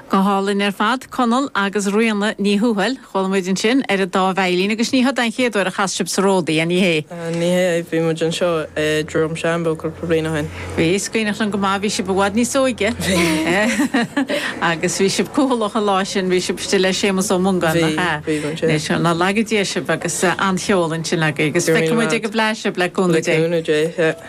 Go hálainn ar fad, Conall agus Ríona Ní Thuathail. Chuala muid ansin ar an dá veidhlín agus ní hé an chéad uair a chas sibh sa Ródaí, an ea? Ní hea, bhí muid anseo i Droim Seanbhó cúpla bliain ó shin. Bhí, is cuimhneach liom go maith, bhí sibh i bhfad níos óige. Bhí. Agus bhí sibh cúthalach an lá sin, bhí sibh istigh le Séamus Ó Mongáin, nach ea? Bhí, bhí muid, aye. Ná laga Dia sibh agus an-cheol ansin agaibh agus feicfidh muid ag an bhFleadh sibh le cúnamh Dé. Le cúnamh Dé, yeah.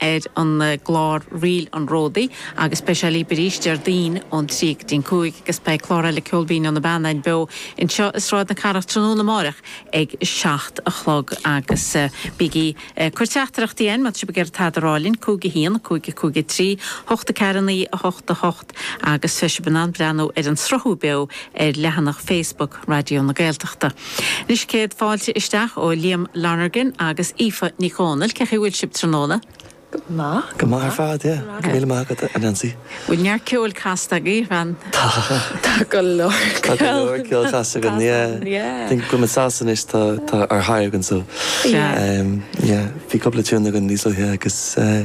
ar an gclár Ríl an Ródaí agus beidh sé libh arís Déardaoin ón trí go dtí an cúig agus beidh clár eile Ceol Binn ó na Beanna beo anseo i Sráid na Cathrach tráthnóna amáireach ag a seacht a chlog agus bígí ag cur teachtaireachtaí chugainn má tá sibh ag iarraidh tada a rá linn, cúig a haon, a cúig a cúig a trí, hocht a ceathar, naoi a hocht, a hocht. Agus tá sibh in ann breathnú ar an sruthú beo ar leathanach Facebook Raidió na Gaeltachta. Anois céad fáilte isteach ó Liam Lonergan agus Aoife Nic Dhomhnaill. Cé chaoi bhfuil sibh tráthnóna? Go maith. Go maith ar fad, yeah. Go raibh míle maith agat, a Neansaí. Bhfuil neart ceoil casta agaibh ann? Tá. Tá go leor ceoil. Tá go leor ceoil casta againn, yeah. Yeah. I think go bhfuil muid sásta anois, tá tá ár ndóthain againn so. Yeah. Yeah. Bhí cúpla tune againn níos luaithe agus eh.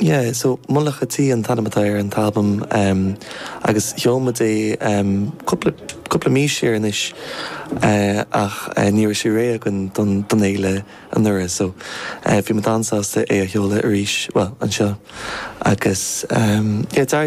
Yeah, so Mullach a' Tí an t-ainm atá ar an t-albam agus sheol muid é cúpla, cúpla mí siar anois ach ní raibh sé réidh againn don, don fhéile anuraidh so bhí muid an-sásta é a sheoladh arís, bhuel, anseo agus yeah d'éirigh go.